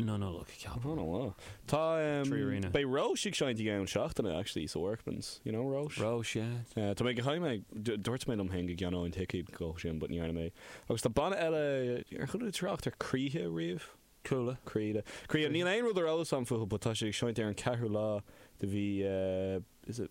Na Nollag, ceapaim. Oh no oh. Tá ehm Tá beidh Róis ag seinnt i gceann seachtaine actually so Workman's you know Róis. Róis yeah. Eh tá mé go háirithe mé dú dúirt mé liom féin go gceannóinn an ticéad dó sin but ní dhearna mé agus tá banna eile ar chuala tú trácht ar Croíthe riamh? Cúla. Croíthe Croíthe níl aon rud ar eolas agam fúthu but tá siad ag seinnt ar an gceathrú lá de mhí eh is it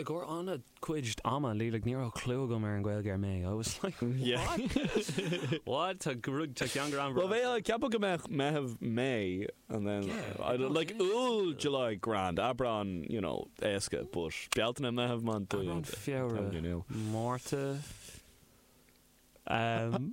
I gcóir ana cuid ama, like ní raibh clú agam ar an Gaeilge ar May, I was like what? What? Tá rud, tá ceann go raibh Bhuel bheadh, cheapfá go mbeadh Meitheamh, May and then yeah, like Iúil, July grand, Aibreán you know éasca but Bealtaine, Meitheamh, Meán Fómhair, Feabhra, Márta. Aibreán!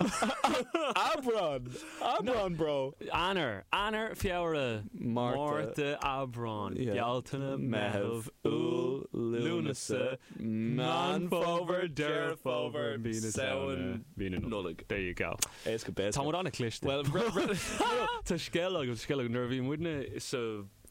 Aibreán, bro! Eanáir, Eanáir, Feabhra, Márta, Aibreán, Bealtaine, Meitheamh, Iúil, Lúnasa, Meán Fómhair, Deireadh Fómhair, Mí na Samhna, Mí na Nollag. There you go. Éasca péasca. Tá muid an-chliste. Bhuel, tá scéal agam, scéal agam. Nuair a bhí muidne sa.